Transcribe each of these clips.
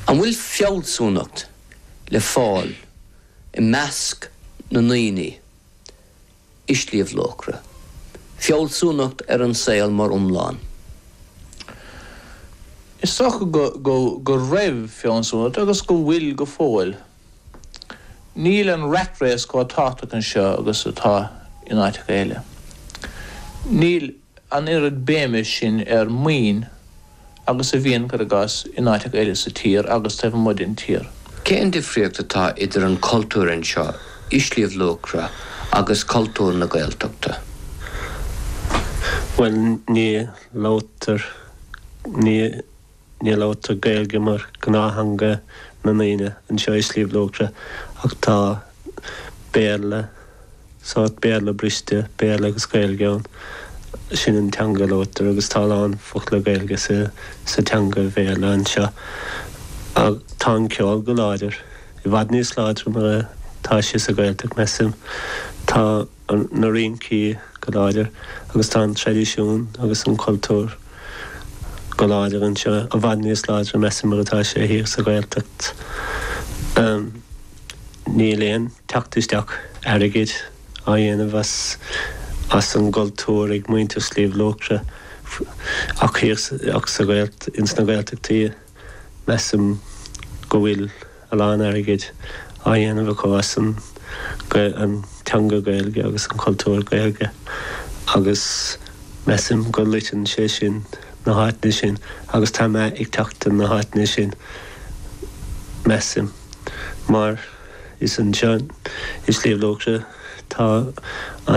An bhfuil fealsúnacht le fáil i measc na ndaoine i Sliabh Luachra, fealsúnacht ar an saol mar iomlán? Is dócha go raibh fealsúnacht, agus go bhfuil go fóill. Níl an rat race chomh tábhachtach anseo agus atá in áiteacha eile. Níl an oiread béime sin ar maoin agus a bhíonn go rialta in áiteacha eile sa tír agus taobh amuigh den tír. Cén difríocht atá idir an cultúr anseo i Sliabh Luachra agus cultúr na Gaeltachta? Bhuel, ní labhartar, ní. Ní labhartar Gaeilge mar gnáththeanga na ndaoine anseo i Sliabh Luachra ach tá Béarla, sórt Béarla briste, Béarla agus Gaeilge ann. Sin an teanga a labhartar agus tá a lán focla Gaeilge sa teanga Bhéarla anseo. Tá an ceol go láidir, i bhfad níos láidre ná mar atá sé sa Ghaeltacht measaim. Tá. na rincí go láidir agus tá an traidisiún agus an cultúr go láidir anseo, i bhfad níos láidre measaim ná mar atá sé thiar sa Ghaeltacht. Níl aon teacht isteach airgid á dhéanamh as an gcultúr ag muintir Shliabh Luachra ach thiar ins na Gaeltachtaí. Measaim go bhfuil a lán airgid á dhéanamh acu as an an teanga Gaeilge agus an cultúr Gaeilge agus measaim go loiteann sé sin na háiteanna sin agus tá meath ag teacht ar na háiteanna sin measaim mar is anseo i Sliabh Luachra tá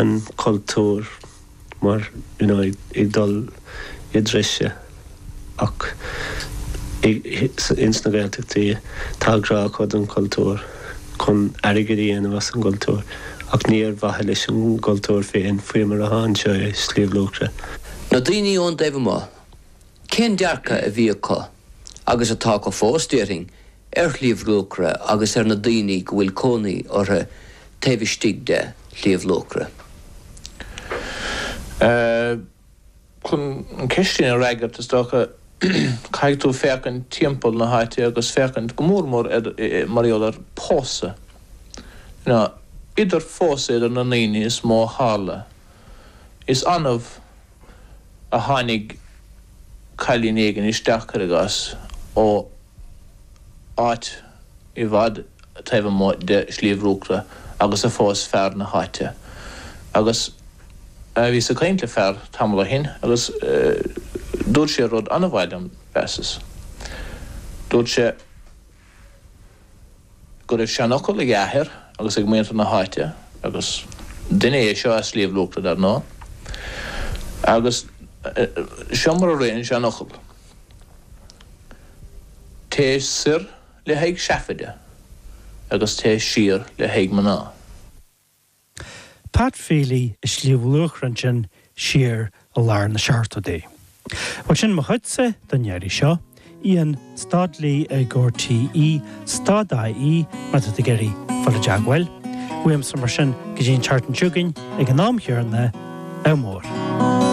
an cultúr mar you know ag dul i dtreise ach ins na Gaeltachtaí tá grá acu don chultúr chun airgid a dhéanamh as an gcultúr ach ní ar mhaithe leis an gcultúr féin faoi mar atá anseo i Sliabh Luachra. Na daoine ón dtaobh amuigh, Cén dearcadh a bhí acu, agus atá acu fós, déarfainn, ar Shliabh Luachra agus ar na daoine go bhfuil cónaí orthu taobh istigh de Shliabh Luachra? Chun an ceist sin a fhreagairt, is dócha, caithfidh tú féachaint timpeall na háite agus féachaint go mór mór ar, mar gheall ar phósadh. You know, idir phósadh idir na ndaoine is mó a tharla. Is annamh a tháinig cailín éigin isteach, cuir i gcás, ó áit i bhfad taobh amuigh de Shliabh Luachra agus a phós fear na háite. Agus bhíos ag caint le fear tamall ó shin agus dúirt sé rud an-mhaith liom, mheasas. Dúirt sé. go raibh seanfhocal ag a athair agus ag muintir na háite agus duine é seo as Sliabh Luachra dar ndóigh agus seo mar a rith an seanfhocal, Téigh soir le haghaidh seafaide agus téigh siar le haghaidh mná. Pat Feely i Sliabh Luachra ansin siar i lár na seachtóidí. Bhuel sin mo chuidse don iarraidh seo. ian stad lee ag RTÉ stad ie má tá tú ag iarraidh dul i dteagmháil uaimse mar sin go dtí an tseachtain seo chugainn ag an am céanna, Ádh Mór!